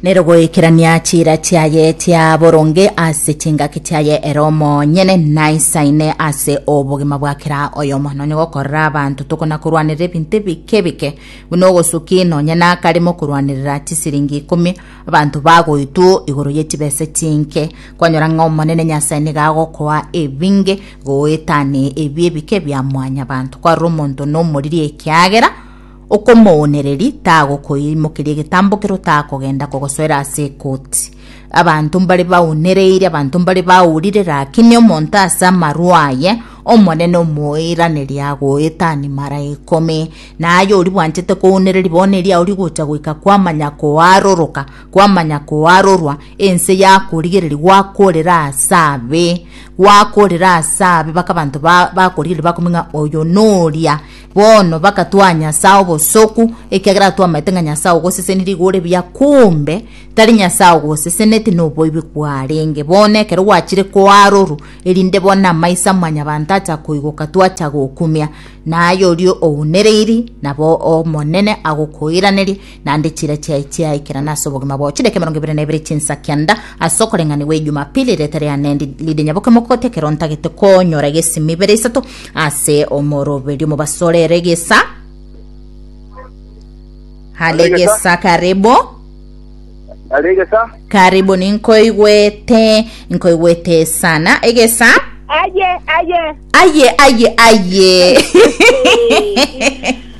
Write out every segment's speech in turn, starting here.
nerogoikerania chiira chiaye chia boronge ase chingaki chiaye ere omonyene naisaine ase obogima bwa kera oyomo nonye gokorera abanto tokona korwanerera ebinto ebike bike buna ogosuki nonye nakarimo korwanerera chisiringi ikomi abanto bagoitwo igoro ye chibesa chinke kwanyora ng'a omonene nyasae niga agokoa ebinge goetane ebi ebike bia mwanyabanto kwarora omonto nomoriri ekiagera okomoonereri tagokoimokeria egetambokero takogenda kogosoera ase ekoti. Abanto mbare baonereire, abanto mbare baurire, rakini omonto ase amarwa aye Omonene omoiraneria agoeta animara ikomi. Na aye oria bwanchete koonereria bono eria oria gocha goika kwamanya koaroroka, kwamanya koarorwa, ense yakorigereria gwakorera ase abe, gwakorera ase abe baka abanto ba- bakorigereria bakomi ng'a oyo noria. Bono bakatwaa Nyasae obosoku, ekiagera twamaete ng'a Nyasae ogosesenirie igo ore buya, kumbe tari Nyasae ogoseseneti, noboibi kwarenge. Bono ekero gwachire koaroru, erinde bono amaiso a mwanyabanto acha koigoka twacha gokumia, na aye oria ounereiri nabo Omonene agokoiranerie, naende chire chiaye chiaikerana ase obogima bwao chidaki emerongo ebere na ebere chinsa kianda ase okoreng'anigwa ejumapili erete riane ridenya boke mokote ekero ntagete konyora egesi mibere isato ase omoroberio mobasore ere egesa hale egesa karibu Are egesa. karibu ninkoigwete nkoigwete sana egesa Aye, aye. aye aye aye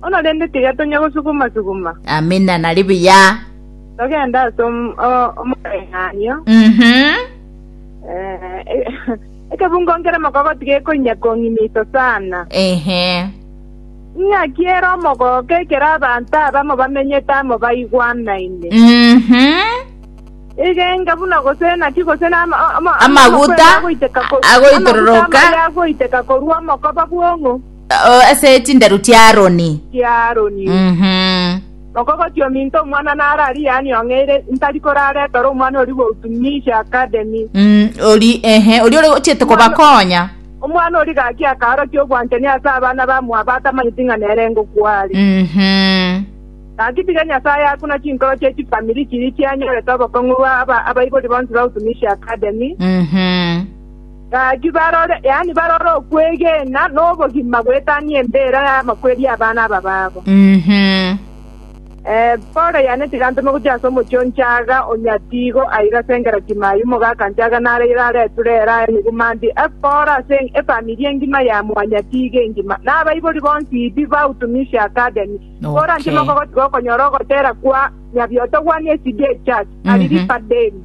Bono rende tiga tonya gosuguma-suguma. Amina, nari buya. Togende ase om- o- omoreng'anio. Mhm. Eh, e- ekebungo nkere mokogoto gekoinya kong'inito sana. Ehe. Ing'aki ere omogooko ekero abanto abamo bamenyete amo baigwanaine. Mhm. Egenga buna gose naki gose na ama- ama- Amaguta amakwere agoiteka ko- a- agoitororoka. amaguta amaya agoiteka korwa omokoba bw'ong'u. O, ase chinderu chia Aroni. chia Aroni. Mhm. Okogoti ominto omwana naro aria yaani ong'eire, ntari koraretore omwana oria goutumisha Academy. Mm, ori ehe ori ore gochiete kobakonya Omwana oria gaki akaorokia obwanchani ase abana ba mwabo atamanyeti ng'a nere ngokwari. Mhm. Gaki tiga Nyasaye akuna chinkoro chie chifamiri chiria chianyorete obokong'u bwa aba- abaibori bonsi ba Utumishi Academy. Mhm. Gaki barore, yaani barore okwegena na obogima goetanie embeera y'amakweri abana aba babo. Eh, Paulo yaane tigantome gochia ase omochie o Nchaga, o Nyatigo, aiga ase engera Timayu, omogaka Nchaga nare ira are Turera, emeguma ndi ekore ase efamiri engima ya mwanyatige engima, na abaibori bonsi bi ba Utumishi Academy. Kora nchie Okay. mokogotiga okonyora ogotera kwa Nyabiotogwani SDA Church, Ariripa Deni.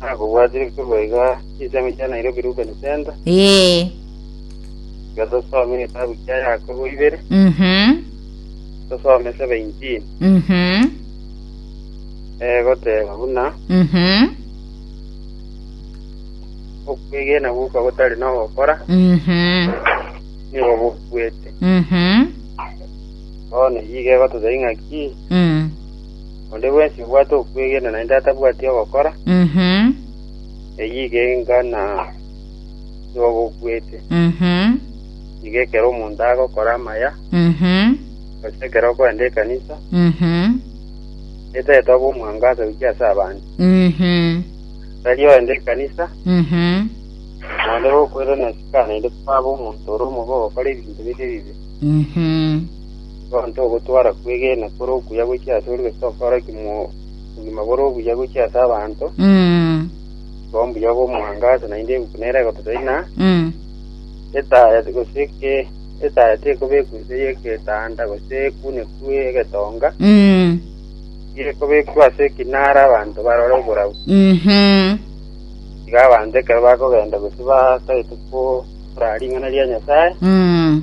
Nakobwatire korwa iga chinsemo chia Nairobi Rubeni Center, Ee. iga tosome egetabu kia Yakobo ibere, Mhm. tosome saba injini, Mhm. eh, goteba buna Mhm. okwegena guka gotari nogokora, Mhm. nigo bokuete. Mhm. Bono iga egototebia ng'a ki? Mm. Onde bwensi obwate okwegena naende atabwati ogokora, Mhm. eyio igenga na yogokuete. Mhm. Iga ekero omonto agokora amaya, Mhm. gose ekero okoenda ekanisa, Mhm. etagete obe omwangaso gochia ase abanto. Mhm. Tari oende ekanisa, Mhm. naende gokwera na sika naende kwabe omonto ore omobe ogokora ebinto bire ebibe. Mhm. Gonto ogotwara kwegena kore okuya gochia ase ore gese okoreki mo obogima bore obuya gochia ase abanto, Mm. igo mbuya obo omoangaso naende eguku nere egototoina, Mm. etaya gose ke etaya tekobekwa inse y'egetanda gose ekune kwe egetonga, Mm. gekobekwa ase ekinara abanto barore oborabu. Mhm. Iga abanto ekero bakogenda gose batagete korora ring'ana ria Nyasae, Mm.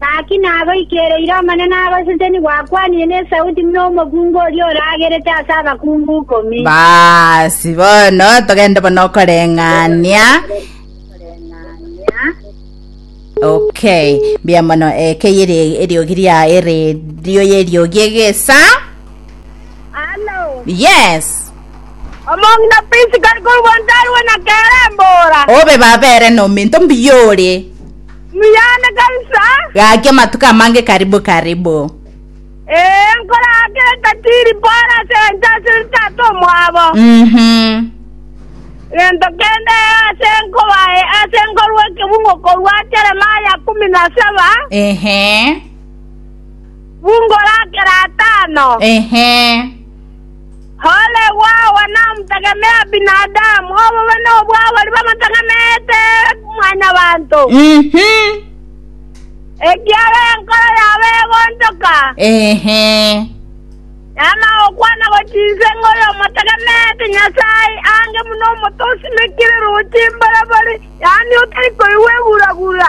Gaki nagoikereire Omonene agosete nigwakwanire nesauti buna omokungu oria oragerete ase abakungu ikomi. Basi bono togende bono okoreng'ania okay mbuya mono ekeye eri- eriogi ria eredio y'eriogi egesa Alo. yes Omong'ina pisi kari korwa ntarwe na kerembora. obe babere nominto mbiyore Muyane kabisa. Gaki amatuko amange karibu karibu. Ee, nkoraake etatiri Paul ase ense ase tata omwabo. Mhm. Gento kende ase nkobae ase nkorwa ekebungo korwa Jeremaya kumi na saba, Ehe. bungo rakera atano. Ehe. Ole gwaoa namotegemea binadamu, obobe nobw'abaria bamotegemeete Mwanyabaanto, ekiagera enkoro yabo egonchoka, yaama gokwana gochiinsa ng'a oyomotegemeete Nyasae aange buna omote osimekire rooche imborobori, yaani otari koigwa eguragura.